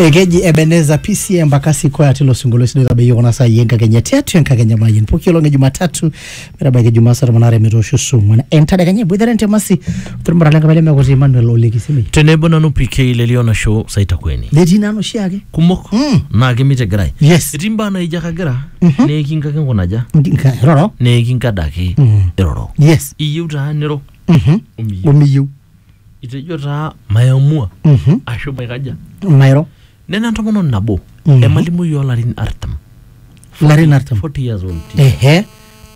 ekeji ebeneza pc embakasi kwaya tilo sinkolio sidai tabayie kuna saai enkakenya tiatua enkakenya mayian pooki olong e jumatatu metabaiki jumaa saa tomon aare metoosho saa ong'uan entadekenya eboitare ntemasi tormurra lenkapa lemekuti emmanuel olekisimi tenebo nanu pk lelio nasho saitakweni netii nanu oshiake kumok Mm. naa kemitegirai yes etii mbaa naijo kagira neekinkaki nkunaja Nka- roro neekinkadaki Mm. iroro yes iyieu taa niro Mhm. omiyieu omiyieu Itejo taa mayamua Mhm. ashu maikaja. mairo Nena entomononi nabo Mhm. emalimui oolarin artam. larin artam 40 years old. ehe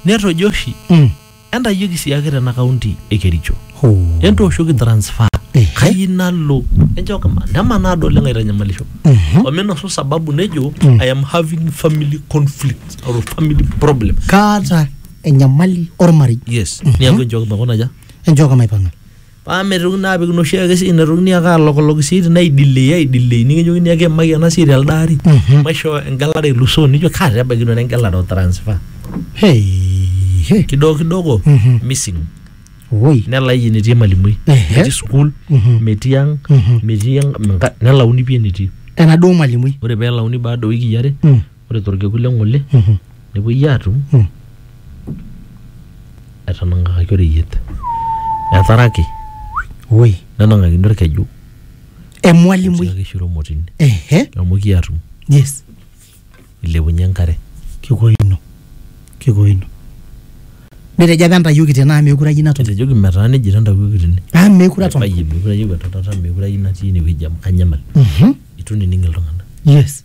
Netojo oshi Mm. entayioki siake tena kaunti e Kericho. Hoo. Entooshoki transfer. Ehe. Kayi nalo. Enchooki ma- nemanaa ado oleng aitanyamalisho. Mhm. Ominosu sababu nejo Mm. I am having family conflict or family problem. kaata enyamali ormarei Yes. Niaku enchooki makuna aja. enchooka maipang'a paa metokini naa apik inoshi ake sii netokini ake alokolok sii tina aidilei aidilei nikijokini ake emaki ena sii telde ari Mhm. maishoo engelare elusoo nijo kaa taa ebaiki nanu engelare o transfer hey, hey. kidogo kidogo Mhm. missing woi nelai enetii emalimui Ehe. metii sukuul Mhm. metii ang Mhm. metii enka- nelauni pii enetii enaduo malimui ore pee elauni baada o wikii are Mm. ore torkekun le ng'ole nepuoi aatum etanang'akaki oreyiet etaraki woi nenang'akini orkeju emwalimui tiaki shiro motini ehe amu kiatum yes ilepunye enkare kikoino kikoino nitejo apa entayioki tene amu meekure ayieu natum etejoki metaa nejia itantawuoki tene amu meekure atum bayie meekure ayieu entonata meekure ayieu natii inewueji amu kanyamal Mhm. itu nining iltung'anak yes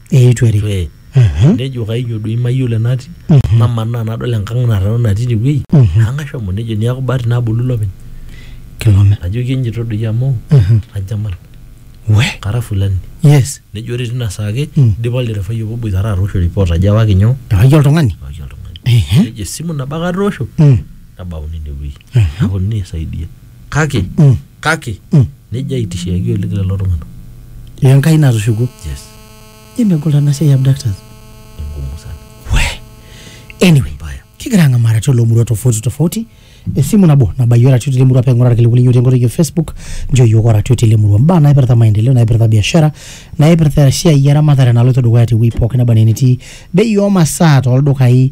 eitu erik Ee, Mhm. nejo kainyo doi mayiolo enatii Mhm. namanaa nadol enkang narrana natii inewueji Mhm. ang ashomo nejo niaku bahati nabolu ilopeny kilome najoki enjito doi amu Mhm. ajamal we kara fulani yes nejo ore tina saa ake Mm. idipa olderefai obo boitara atoosho report ajo ewaki nyoo ewaki oltung'ani ewaki oltung'ani Ehe. nejo esimu nabo ake atoosho Mm. nabauni inewueji Mhm. aponunui aisaidia kake Mm. kake Mm. nejo aitishiaki oleng lelo tung'anak le enkai natushukuo yes nemegol ena siai ya abductors enkumu sana we anyway mbaya kigira ang'amara tilo murua tofauti tofauti esimu nabo nabayioro atua tile murua peng'ura irkiliku linyo tenkoitoi e facebook njo yiok ora atua tile murua mbaa naipirta maendeleo naipirta biashara naipirta esiai eramatare naloito dukuya tewuei pookin naba naa enetii bei omasaa toldukai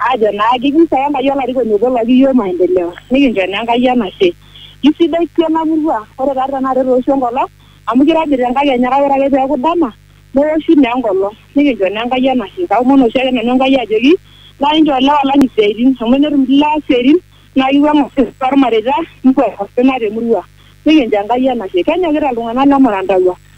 Aajo naa kiji sae Enkai olarikoni obo laki iyiook maendeleo nikincho naa Enkai enashe. Kisidai pii ena murua ore taadi tenakata etooshuo enkolong amu keirobi te nkakenya kake ore ake pee eeku dama newoshu naa enkolong nikincho naa Enkai enashe. Kaomon oshiake nanu Enkai ajoki nchoo inchoo ilewa lang isiaaitin amu tenetum ilewa isiaaitin naa keiwuang'u osina toolmareita neiwuang'u osina te murua nikincho Enkai enashe. Kenyokita iltung'anak le Marandalua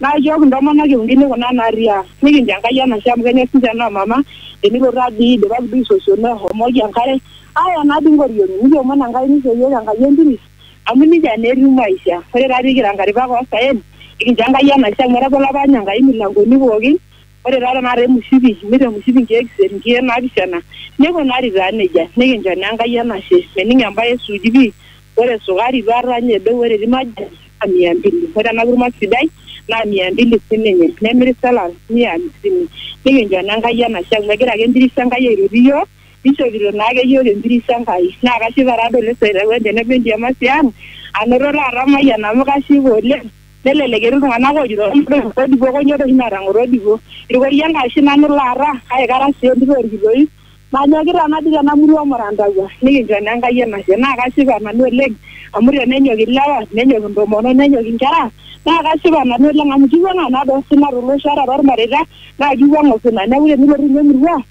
Naa ichooki intomonok e uni kuna naarriaa, nikincho Enkai enashe amu kenyor sii ninche noo mama, tenilo taa dii idipaki duo aisosiono eshomoki enkare aaya naa dii inkoriong'i nikiomon Enkai nisho iyiook Enkai enturit amu nijia naa etiu maisha. Ore taa pee kira inkaripak oo saen, nikincho Enkai enashe amu etabolo apa ninye Enkai imilankoni pooki Ore taa tenakata emushipi, imir emushipi nkeek isiet, nkeek naapishana, neikunari taa nejia. Nikincho naa Enkai enashe. Mening embae e Suuji pii, ore esukari duo ata ninye edou ore etii majani naa mia mbili. Ore ena kurma sidai naa mia mbili sii ninye. Nemiri selai mia hamsini. Nikincho naa Enkai enashe amu egira ake empiris Enkai aitoti iyiook, neishopito naa ake iyiook empiris Enkai. Naa kashipa taa doi oleng tenebo endiamasi ang anoto taata ormayian amu kashipa oleng. Nelelek etii iltung'anak oojoito kamadup orkodipo konyoo toi oshi naata ng'orodipo? Irkoria Enkai oshi nanu laara kake kara sii entito olkitoip. Manyokita natii tena murua Murantagua nikincho naa Enkai enashe naa kashipa nanu oleng amu tenenyok ilewa nenyok intomonok nenyok inkera naa kashipa nanu oleng amu kiwuang'a naa too sina tolosho ata toolmareita naa kiwuang'a osina neeku tenilotu ninye emurua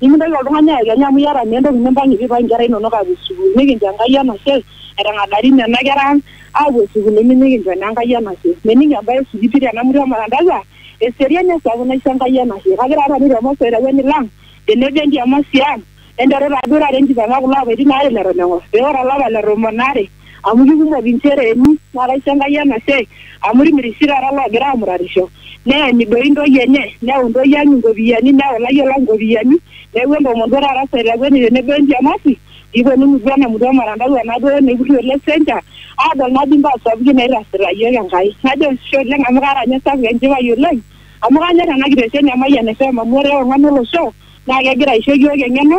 Nimintoki oltung'ani ayekenya amu iyata naa entoki nimpang'ie pee eipang' inkera inono aapuo sukuul. Nikincho Enkai enashe etang'adari nena kera ang' aapuo sukuulini nikincho naa Enkai enashe. Mening embae e sikitiki te Namutu e Marandasa, eseriani esapuk naisho Enkai enashe. Kajo taa nanu te Mose olairewuani lang' tenebo enkiamasi ang' enteru taa duo taata enkipang'a kulo apaitin aare leton eng'or pee ore olapa le tomon aare amu kikumok inchere emi naraiso Enkai ena siai amu timirisho taata loogira aamuratisho neeny doi intoyie enye neun doi ang inkopiyiani neun ilayiok lang inkopiyiani neeku entoomon duo taata sai takueni tenebo entemasi piiponu mutua ena mutua ormutandao ena duo naiputu ele sencha aadol naa dii imbaa sapukin naitasita iyiook Enkai najo ashe oleng amu kaata ninye esapuk enchipai oleng amu kanyorr ena kitesheni e Mayian FM amu ore ong'an olosho naa kegira aisho iyiook eng'eno.